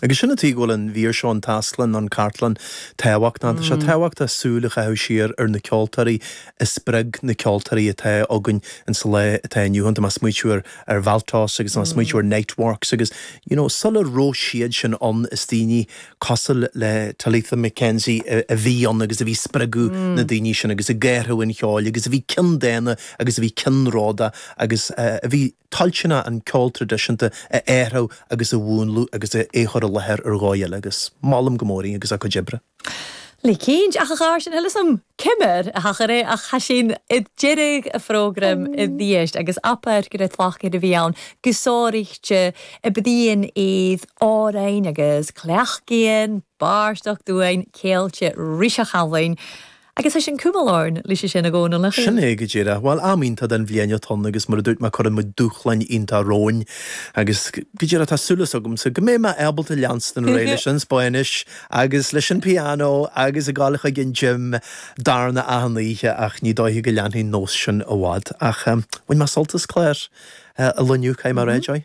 Agus sin an tuige go bhfuil an mhír seo, an Tasglann nó an Cartlann, tábhachtach. Tá sé tábhachtach súil a chaitheamh siar ar na ceoltóirí a spreag na ceoltóirí atá againn in sa lá atá inniu ann. Tá mé ag smaoitiú ar ar Valtos agus tá mé ag smaoitiú ar Niteworks agus you know sula raibh siad sin ann is daoine cosúil le Talitha MacKenzie a bhí ann agus a bhí ag spreagadh na daoine sin agus ag cothú an cheoil agus a bhí ceanndána agus a bhí ceannródaíoch agus a bhí toilteanach an ceol traidisiúnta a athrú agus a mhúnlú agus é a chur i láthair ar dhóigh eile agus molaim go mór í agus a cuid oibre. Le cinnt, ach a charaid, chan eil fhios 'am ciamar a thachair e ach tha sinn aig deireadh a' phrògraim a-rithist agus abair gur e tlachd a bh' ann gu sònraichte a' bruidhinn air òrain agus cleachdaidhean, barrstoc d'uain, ceangailte ris a' Challainn. Agus tha sinn a' cumail oirnn leis a sin, a Dhónaill. Sin é go díreach. Bhuel, am iontach den bhliain atá ann agus mar a dúirt mé cuireann muid dúshláin iontacha romhainn agus go díreach tá súileas agamsa go mbeidh mé ábalta leanstan ar aghaidh leis an Spáinnis agus leis an pianó agus ag gabháil chuig an gym darna achan oíche ach ní dóiche go leanfaidh an nós sin i bhfad ach bhain mé sult as clár an lae inniu, caithfidh mé a rá, Joy.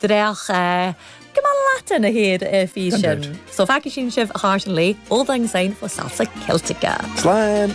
dreach a. Go mall leat ina thaobh a físean. So, feicfidh sinn sibh thart an lae. Auld Lang Syne fo Salsa Celtica. Slán!